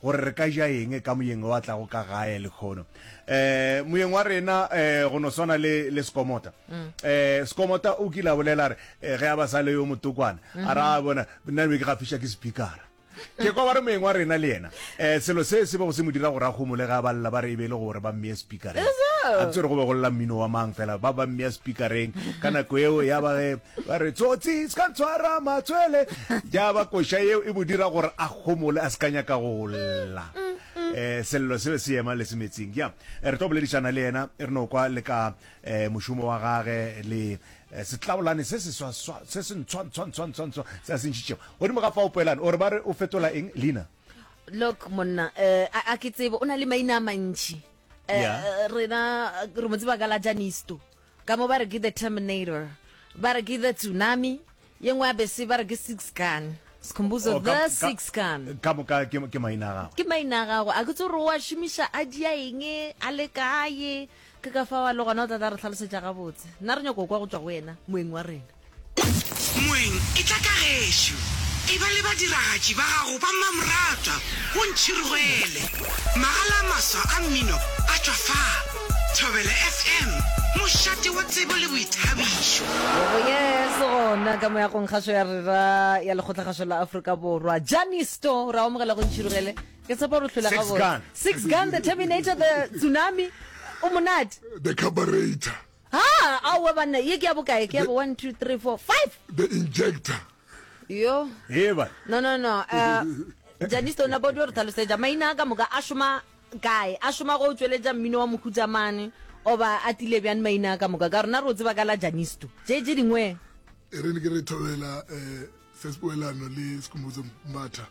Gore re ka ja eng ka Moyeng yo a tlago ka gae, lekhono. Um, Moyeng wa rena um go no swana le, le Sekomota. Um, Sekomota o kile a bolela a re, um, ge a ba sa le yo motokwana, a ra bona, nna be ke gafiša ke sepikara. Ke kwa ba re Moyeng wa rena le yena, um, selo se se bego se mo dira gore a humole ge a ba lla ba re e be e le gore ba mmea sepikareng. A ke tsebe gore go be go lla mmino wa mang, fela ba ba mmea sepikareng ka nako yeo, ya ba ge Ba re tsotsi se ka ntshwara matswele. Ja ba koša yeo e mo dira gore a gomole a se ka nyaka go lla. Eh, sello se be se ema le se metsing. Ja, eh, re tlo boledišana le yena re no kwa le ka eh, mošomo wa gage le eh, setlabolane se se swa swa se se ntshwa ntshwa ntshwa ntshwa ntshwa se a se ntšhitšego. Godimo ga fao poelane o re ba re o fetola eng leina? Look monna, eh, a a ke tsebe o na le maina a mantši. Eh, Yeah. eh, rena eh, re mo tseba ka la Janisto. Ka mo ba re ke the Terminator, ba re ke the Tsunami, ye nngwe ya bese ba re ke Six Gun. Skhumbuzo Oh, ka- the ka- Six Gun. ka moka ke ke maina a gagwe Ke maina a gago, a ke tse gore o a šomiša a dia eng, a le kae, ke ka fa wa le gona o tla tla re tlhalosetša gabotse. Nna re nyako kwa go tšwa go wena, moeng wa rena. Moeng, etla ka gešo. Eba le badiragatši ba gago ba mmamoratwa, o ntšhirogele. Magala a maswa a mmino a tšwa fa. Thobela FM, mošate wa tsebo le boithabišo. Yebo yes gona ka moyagong kgašo ya rera ya lekgotlakgašo la Afrika Borwa Jani Store ra omogela go ntšhirugele ke tshepa gore tlhola ga bone Six Gun the Terminator the Tsunami o monate the Carburetor Ha, aowa banna, ye ke ya bokae? Ke ya bo one, two, three, four, five! The injector. Yo. Hee bana. No, no, no. Uh, Janice, ona bodi o re tlhalosetša. Maina a ka moka a šoma kae? A šoma go tšweletša mmino wa mokhutsa mane? Oba a tile bjang maina a ka moka? Ka rona re o tseba ka la Janisto. Tše tše dingwe. E re ne ke re thobela eh, Sespoelano le Sekhumbuzo Mbatha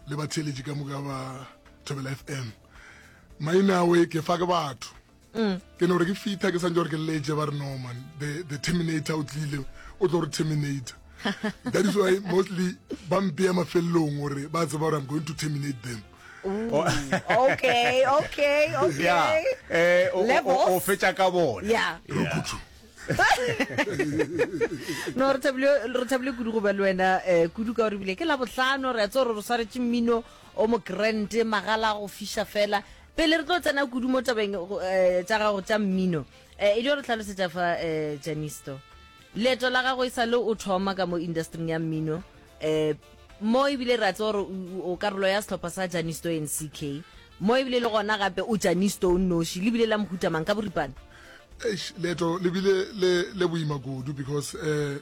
le batheeletši ka moka ba Thobela FM. Maina awe ke fa ke batho. mm. ke no re ke fitha ke santse gore ke letse ba re no man the, the terminator o tlile o tlo re terminator that is why mostly ba mpeya mafelelong gore ba tseba gore i'm going to terminate them oh. okay okay okay eh, o fetša ka bona yeah. no re thabile kudu go ba le wena um kudu ka gore bile ke la botlhano re a tse gore re swaretse mmino o mo grand magala go fiša fela pele re tlo tsena kudu mo tabeng go- eh, tša gago tša mmino eh, e dio re tlhalosetša fa eh, janisto leeto la gago e sa le o thoma ka mo industring ya mmino eh, mo ebile re a tsewa gore o- o o karolo ya sehlopha sa janisto nck mo ebile le gona gape o janisto o nnoši le bile la mohuta mang ka boripana Eish, leeto le bile le le boima kudu because eh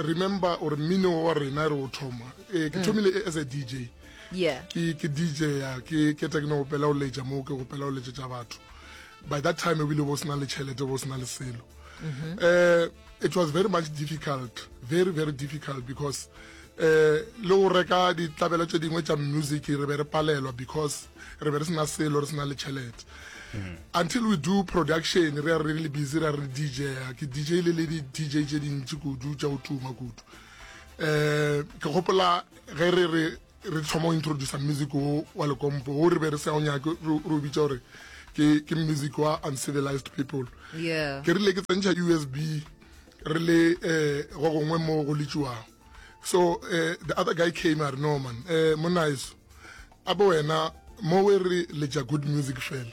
remember or mmino wa rena re o thoma eh, ke thomile e- as a dj yeah ke ke dj ya ke ke tekno go pela o leja mo ke go pela o leje tsa batho by that time ebile bo sna le chelete bo sna le selo mm-hmm. eh it was very much difficult very very difficult because eh le go reka ditlabelo tse dingwe tsa music re be re palelwa because re be re sena selo re sena le chelete mm-hmm. until we do production re re le busy re re DJ ke DJ le le di DJ tse dintsi kudu tsa o tuma kudu eh ke gopola ge re re re thoma go introducer music wo wa lekompo wo re be re sa o nyake re o bitsa gore ke music wa uncivilized people ke rile ke tsentšha usb re le um go gongwe mo go letšiwago so um the other guy came a re no man um eh, monaeso a bo wena mo we re letša good music fela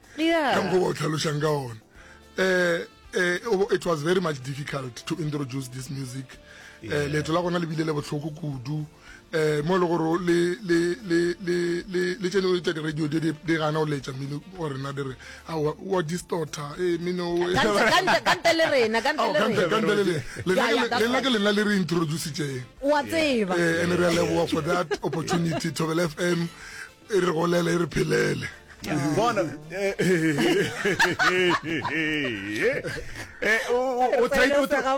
yeah. ka mokgwa o tlhalošang ka gona um it was very much difficult to introduce this music eh, yeah. uh, leeto la gona le bile le botlhoko kudu um mo e le gore le tsene tsa di-radio di gana go letsa mmino go rena di re wa distorta e mminokante le renalena ke lena le re introducitseng wa tseba and re a leboga for that opportunity tobel f m e re golele e re phelele bona eh, eh, eh,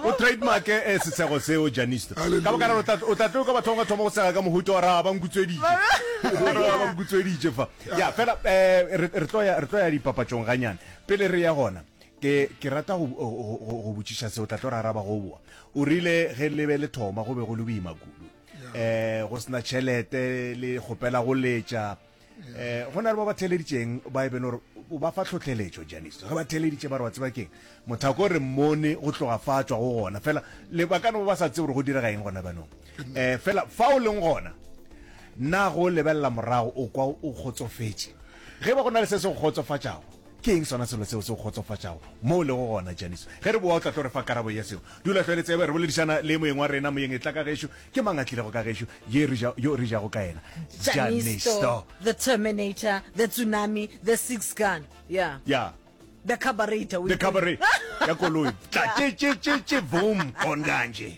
o trademark e sesego seo janisto ka boka rero o tla tlo ka bathong ga thoma go sega ka mohuto wa ra ba nkutsweditše ba nkutsweditše fa ya fela re tlo ya dipapatšong ganyane pele re ya gona ke ke rata go go botšiša se o tla tlo raraba go boa o rile ge lebe le thoma go be go le boima kudu eh go sena tšhelete le gopela go letša eh go na le ba ba theleditseng ba e bene gore o ba fa tlhotlheletšo janiso ge ba theleditše ba re wa tseba keng mothako re mmone go tloga fa tswa go gona fela le ba ka no ba sa tsebe gore go direga eng gona banong eh fela fa o leng gona nna go lebelela morago o kwa o kgotsofetse ge ba go na le se se go kgotsofatšago Ke eng sona selo seo se go kgotsofatšago mo o lego gona, Janice? Ge re boa o tla tlo re fa karabo ya seo. Dula hlwele, tsebe. Re boledišana le moyeng wa rena. Moyeng, etla ka gešo. Ke mang a tlilego ka gešo? Ye re ja, yo re jago ka yena. Janice to. The Terminator, the Tsunami, the Six Gun. Ya. Ya. The Carburetor, o e. The Carburetor ya koloi. Tla tše, tše, tše, tše, voom, gone kanje.